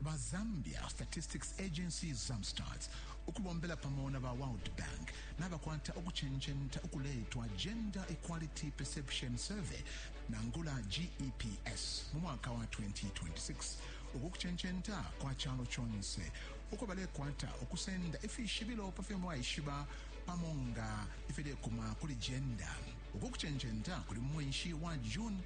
Ba Zambia Statistics Agency, Zamstat, ukubombela pamo na ba World Bank nabakwata ukucenjenta ukuleitwa Gender Equality Perception Survey, nangula GEPS, mu mwaka wa 2026. Uku kucenjenta kwa calo conse uko balekwata ukusenda ifishibilo pa fyo mwaishiba pamo nga ifilekuma kuli gender. Uku kucenjenta kuli mu mwenshi wa June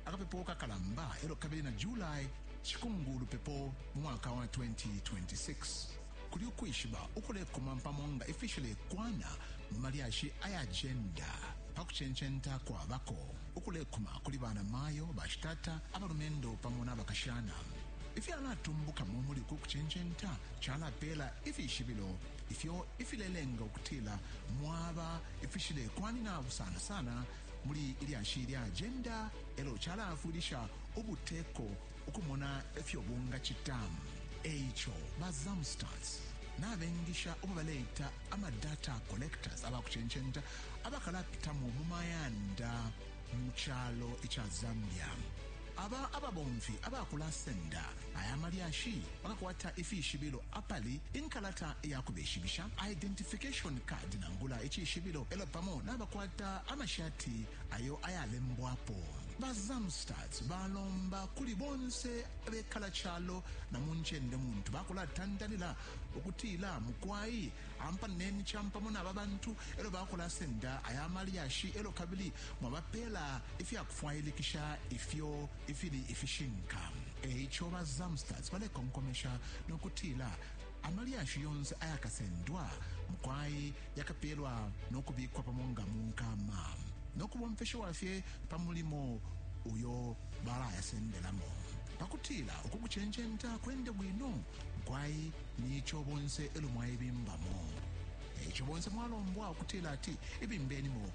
akapepo kakalamba e lyo kabili na July cikungu ulupepo mu mwaka wa 2026. Kuli ukwishiba ukulekuma pamo nga ifishilekwana mu malyashi aya jenda pa kucencenta kwabako, ukulekuma kuli banamayo, bashitata, abalumendo pamo na bakashana. Ifyalatumbukamo muli uku kucencenta calapeela ifishibilo ifyo ifilelenga ukutila mwaba ifishilekwanina sana sana muli ilyashi lya ajenda elo calaafwilisha ubuteko ukumona efyo bungacita. Eico, ba Zamstats nabengisha ubo baleita ama data collectors abakucencenta abakalapitamo mu mayanda mu calo ica Zambia. Aba ababomfi abakulasenda aya malyashi bakakwata ifishibilo apali inkalata iyakubeshibisha, identification card nangula icishibilo, elyo pamo nabakwata amashati ayo ayalembwapo. Ba Zamstats balomba kuli bonse abekala calo na mu ncende muntu bakulatandalila ukutila, mukwai ampaneni campamo naba bantu elyo bakulasenda aya malyashi elyo kabili Mwabapeela ifya kufwailikisha ifyo ifili ifishinka. E ico ba Zamstads balekonkomesha no kutila, Amalyashi yonse ayakasendwa, mukwai yakapeelwa no kubikwa pamo nga mu nkama, no kubomfeshiwa fye pa mulimo uyo balayasendelamo. Pa kutila uku kucencenta kwende bwino, mukwai ni co bonse e lyo mwaibimbamo. E ico bonse mwalombwa ukutila ati ibimbenimo.